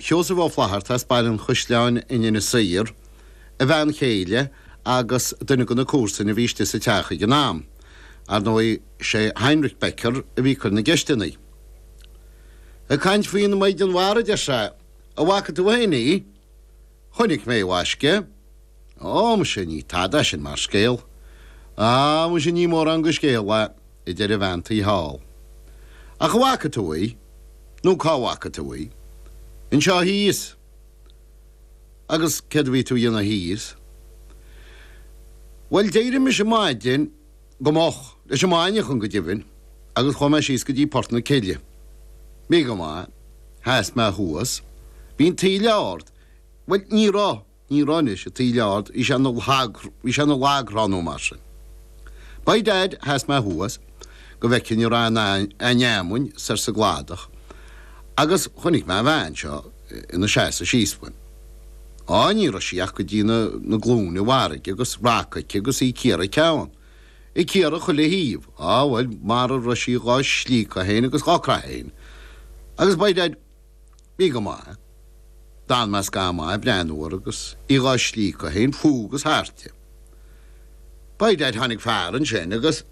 Sheosaimh Ó Flaithearta as Baile an Chaisleáin in Inis Oírr, a bhean chéile agus duine de na comharsana a bhí istigh sa teach ag an am. Ar ndóigh, sé Heinrich Becker a bhí ag cur na gceisteanna. Ag caint faoin mhaighdean mhara, deir sé, 'An bhfaca tú féin í? Chonaic mé í a mhaisce. Ó, muise, ní tada sin mar scéal. Á, muise, ní mórán de scéal é, a deir an bhean tí thall. Ach an bhfaca tú í? Nó cá bhfaca tú í? Anseo thíos. Agus céard a bhí tú a dhéanamh thíos? Bhuel, d'éirigh mise maidin, go moch, leis an maidneachan, go deimhin, agus chuaigh mé síos go dtí Port na Cille. Bhí go maith. Sheas mé thuas. Bhí an taoille ard. Bhuel, ní raibh. Ní raibh anois, an taoille ard, bhí sé bhí sé ina lagthrá nó mar sin. By dad, sheas mé thuas, go bhfeicfinn an raibh aon fheamainn soir sa gcladach agus chonaic mé an bhean seo ina seasamh síos uaim. Á, ní raibh sí ach go dtí na glúine i bhfarraige agus raca aici agus í ag cíoradh a ceann. Ag cíoradh chuile thaobh. Á, bhuel, mara raibh sí dhá slíocadh féin agus dhá craitheadh féin. Agus by dad. Bhí go maith. D'fhan mé scaitheamh maith ag breathnú uirthi agus í dhá slíocadh féin fúithi agus thairti. By dad tháinig fear ansin agus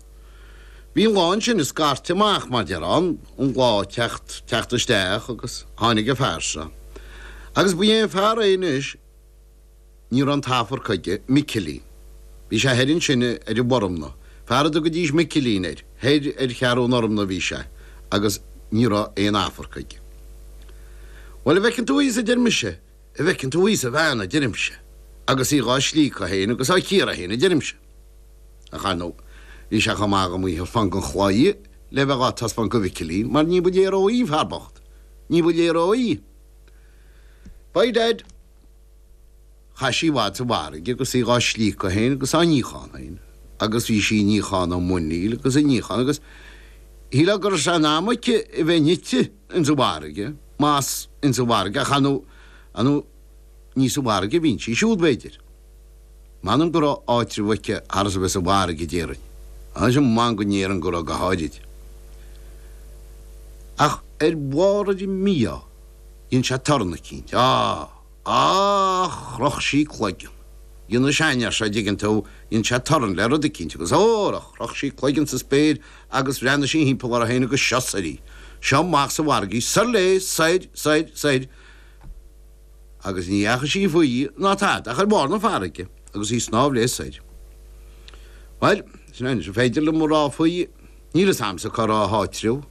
bhí an lá ansin ag scairteadh amach mar deir an an lá ag teacht teacht isteach agus tháinig an fear seo agus ba é an fear é anois Ní raibh an t-afarc aige, Micilín. Bhí sé thoir ansin ar an bhFormna. Fear a dtugaidís Micilín air, thoir ar Cheathrú an Fhormna a bhí sé, agus ní raibh aon afarc aige. Bhuel, a' bhfeiceann tú thíos, a deir mise, a' bhfeiceann tú thíos an bhean, a deirimse, agus í dhá slíocadh fhéin agus á cíoradh fhéin, a deirimse. Ach, ar ndóigh, bhí sé chomh maith agam í a thaispeáint gon chlaí le bheith dhá taispeáint go Mhicilín, mar ní ba léir dhó í, an fear bocht, ní ba léir dhó í. By dad! Chaith sí i bhfad sa bhfarraige agus í dhá slíocadh féin agus á níochán féin agus bhí sí ag níochán a muiníl agus ag níochán agus shílfeá go raibh sé in am aici a bheith nite ins an bhfarraige, más ins an bhfarraige ach ar ndóigh ní sa bhfarraige a bhíonn sí siúd b'fhéidir. M'anam go raibh áitreabh aici thar is a bheith sa bhfarraige déarfainn, anois m'anam go ndéarfainn go raibh go háirid. Ach ar bharr an mhí-ádh. Dhein sé torann eicínt. Á! Á! Chroch sí a cloigeann. Dhein an seanfhear seo, dtuigeann tú, dhein sé torann le rud eicínt agus hóra, chroch sí a cloigeann sa spéir agus bhreathnaigh sí thimpeall uirthi féin agus seo soir í, seo amach sa bhfarraige, soir léi, soir, soir, soir, agus ní dheachaigh sí faoi ná tada ach ar bharr na farraige agus í ag snámh léi soir. Bhuel, sin é, anois, ar féidir liom a rá faoi, Níl 'fhios a'msa cá raibh a háitreabh.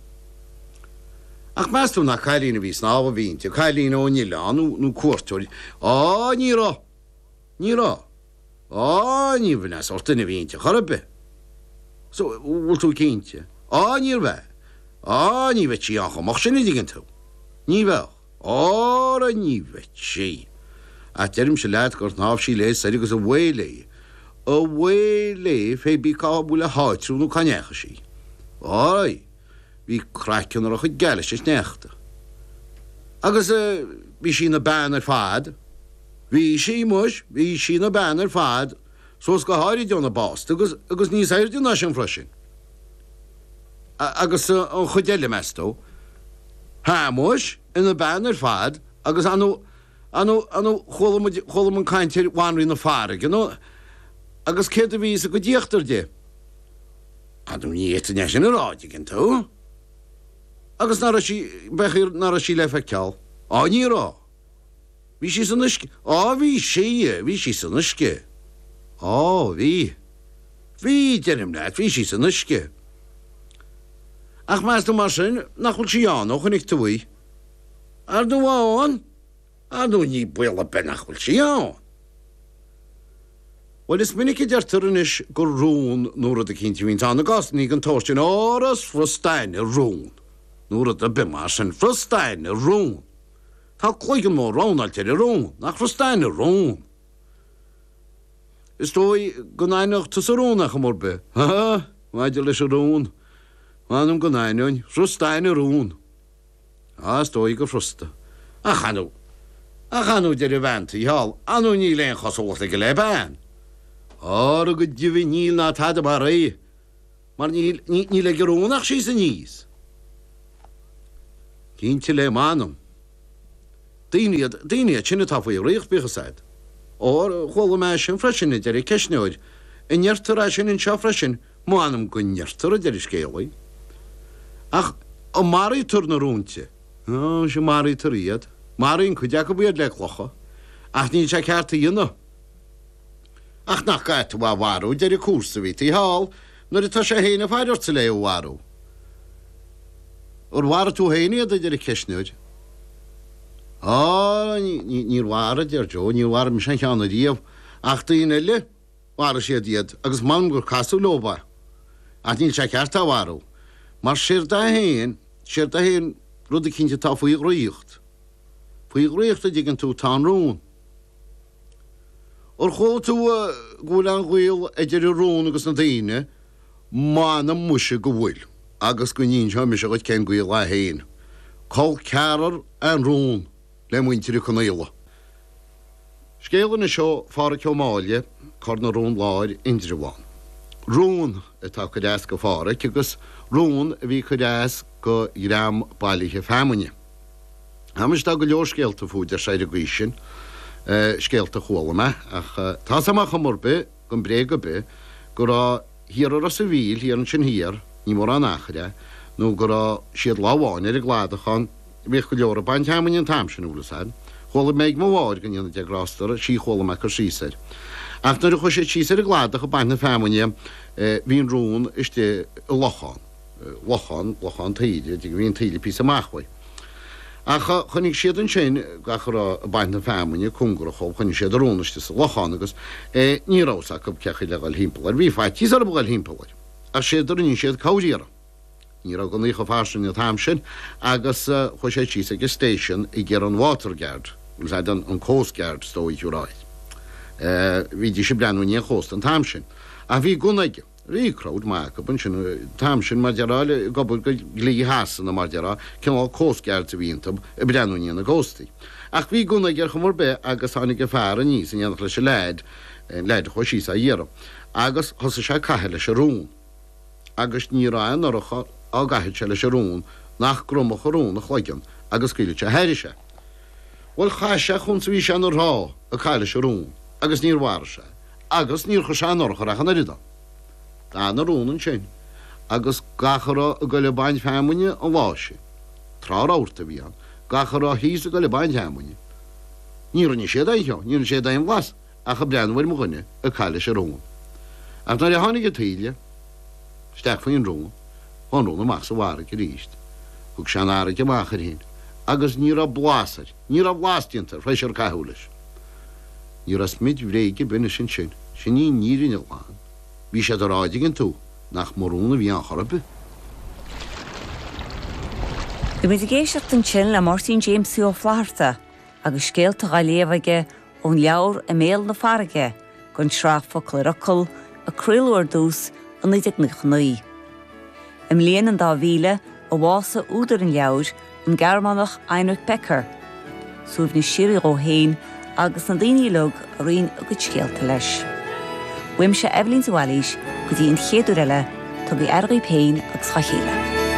Ach meas tú nach cailín a bhí ag snámh a bhí inti, cailín ón Oileán nó, nó cuairteoir, á ní raibh, ní raibh, á ní raibh, an sórt duine a bhí inti chor ar bith so, bhfuil tú cinnte, á níorbh ea, á ní bheadh sí ann chomh moch sin a' dtuigeann tú, ní bheadh. Óra ní bheadh sí! Ach deirimse leat gur shnámh sí léi soir agus abhae léi. Abhae léi fé bí cá bhfuil a háitriú nó cá ndeachaigh sí. Ói, bhí craiceann uirthi chomh geal leis an sneachta. Agus bhí sí ina bean ar fad. Bhí sí, muis, bhí sí ina bean ar fad, suas go háirid óna básta agus, agus níos aoirde ná sin freisin. Agus an chuid eile, meas tú? Shéamuis, ina bean ar fad agus anu, anu, anu, chuala muid, chuala muid caint ar Bhanríon na Farraige, ar ndú, agus céard a bhí sa gcuid íochtar di? Ar ndú, ní fhéadfainn é sin a rá, an dtuigeann tú? Agus nach raibh sí, b'fhéidir nach raibh sí le feiceáil? Á, ní raibh! Bhí sí san uisce. Á, bhí sí, bhí sí san uisce. Á, bhí. Bhí, deirim leat, bhí sí san uisce. Ach meas tú mar sin nach bhfuil sí ann, ó chonaic tú í? Ar ndú ann? Ar ndú níl baol ar bith nach bhfuil sí ann! Bhuel, is minic a deirtear anois gur rón nó rud eicínt a bhíonns ann i gcásannaí den tsórt sin, ara is furasta aithne ar rón nó rud ar bith mar sin, furasta aithne ar rón. Tá cloigeann mór rabhnáilte ar an rón nach furasta aithne ar an rón. Is dóigh go n-aithneodh tusa rón ar chuma ar bith, ha ha! Maidir leis an rón, mh'anam go n-aithneoinn, furasta aithne ar rón. Á, is dóigh gur furasta. Ach ar ndú! Ach ar ndú, deir an bhean taobh thall, ar ndú níl aon chosúlacht aige le bean. Óra go deimhin níl ná tada mar é! mar níl, ní, níl ag an rón ach síos aníos. Cinnte le m'anam. Daoine iad, daoine iad sin atá faoi dhraíocht, bíodh a fhios a'd. Óir chuala mé é sin freisin, a deir an ceistneoir. An ndeirtear é sin anseo freisin? M'anam go ndeirtear, a deir an scéalaí. Ach an maraítear na rónta? Ó, sea, maraítear iad. Maraíonn cuid acu iad le clocha. Ach níl sé ceart a dhéanamh. Ach nach gcaithfeá é a mharú, a deir an comharsa a bhí taobh thall, nuair atá sé fhéin ag faire ortsa le é a mharú. Ar mharaigh tú fhéin iad, a deir an ceistneoir. Á, ní, níor mharaigh, a deir Joe, níor mharaigh mise aon cheann ariamh, ach daoine eile, mharaigh siad iad, agus m'anam gur casadh leob é, ach níl sé ceart é a mharú, mar séard é fhéin, séard é fhéin, rud eicínt atá faoi dhraíocht, faoi dhraíocht, a' dtuigeann tú, tá an rón. Ar chuala tú go bhfuil an gaol idir an rón agus na daoine? M'anam muise go bhfuil, agus go n-inseoidh mise dhuit cén gaol é féin. Col ceathrar é an rón le muintir Uí Conaola. Scéal anois ó Phádhraic Ó Máille, Cor na Rón Láir, Indreabhán. Rón atá ag cur as go Phádhraic, agus rón a bhí ag cur as go dhream bailithe feamainne. Anois tá go leor scéalta fút, arsa ar an gcaoi sin, scéalta a chuala mé, ach tá's agam ar chuma ar bith gan bréag ar bith, go raibh thiar i Ros an Mhíl, thiar ansin thiar, ní mórán achair é, nó go raibh siad lá amháin ar an gcladach ann, bhíodh go leor ag baint fheamainne an t-am sin, bhfuil 'fhios a'd. Chuala mé ag mo mháthair, go ndéana Dia grásta uirthi, 'sí a chuala mé ag cur síos air. Ach nuair a chuaigh siad síos ar an gcladach ag baint na feamainne, bhí an rón istigh i lochán. lochán, lochán taoide, a d'fhigh a bhí an taoille píosa amach uaidh. Ach chonaic siad ansin gach a raibh ag baint na feamainne cóngarach dhóibh, chonaic siad an rón istigh sa lochán agus ní rabh fhios acu cé chaoi le dhul thimpeall air. Bhí faitíos orthu dhul thimpeall air, ach séard a rinne siad ar chuma ar bith. Ní rabh gunnaí chomh fairsing an t-am sin agus chuaigh siad síos ag an station ag iarraidh an Water Guard, nó an Coast Guard is dóigh, you're right. Bhídís ag breathnú i ndiaidh an chósta an t-am sin. Ach bhí gunna ag an. Bhí crowd maith acu ansin an t-am sin, mar déarfá, ag obair go dhlí Shasana, mar déarfá, cineál coast guards a bhí iontu, ag breathnú i ndiaidh na gcóstaí. Ach bhí gunna aige ar chuma ar bith agus tháinig an fear aníos in éineacht leis an leaid, an leaid a chuaigh síos á iarraidh, agus thosaigh sé ag caitheamh leis an rón. Agus ní raibh aon urchar á gcaitheamh sé leis an rón nach gcromfadh an rón a chloigeann agus scaoileadh sé thairis é. Bhuel, chaith sé chúns a bhí sé ina thrá ag caitheamh leis an rón agus níor mharaigh sé. agus níor chuir sé aon urchar ach an oiread ann. D'fhan an rón ansin, agus gach a raibh ag goil ag baint feamainne an lá sin, tráth rabharta a bhí ann, gach a raibh thíos ag goil ag baint feamainne, ní rinne siad aon cheo, ní rinne siad aon bhlas ach ag breathnú ar mo dhuine ag caitheamh leis an rón. Ach nuair a tháinig an taoille isteach faoin rón, bhí an rón amach sa bhfarraige aríst, thug sé an fharraige amach air fhéin, agus ní raibh blas air. Ní raibh blas déanta air th'éis ar caitheadh leis. Ní raibh smid bhréige ar bith anois ansin. Sin í an fhírinne ghlan. Bhí siad ag rá, an dtuigeann tú, nach mba rón a bhí ann chor ar bith. Bhí muid ag éisteacht ansin le Máirtín Jamesie Ó Flatharta agus scéalta á léamh aige Ón leabhar I mBéal na Farraige, dhon tsraith Focal ar Fhocal, a craoladh ar dtús i 1999. I mbliain an dá mhíle a bhásaigh údar an leabhair, an Gearmánach Heinrich Becker. Suaimhneas síoraí dhó fhéin agus na daoine uilig a roinn a gcuid scéalta leis. Uaimse Eibhlín de Bhailís go dtí an chéad uair eile, tugaigí aire dhaoibh fhéin agus dha chéile.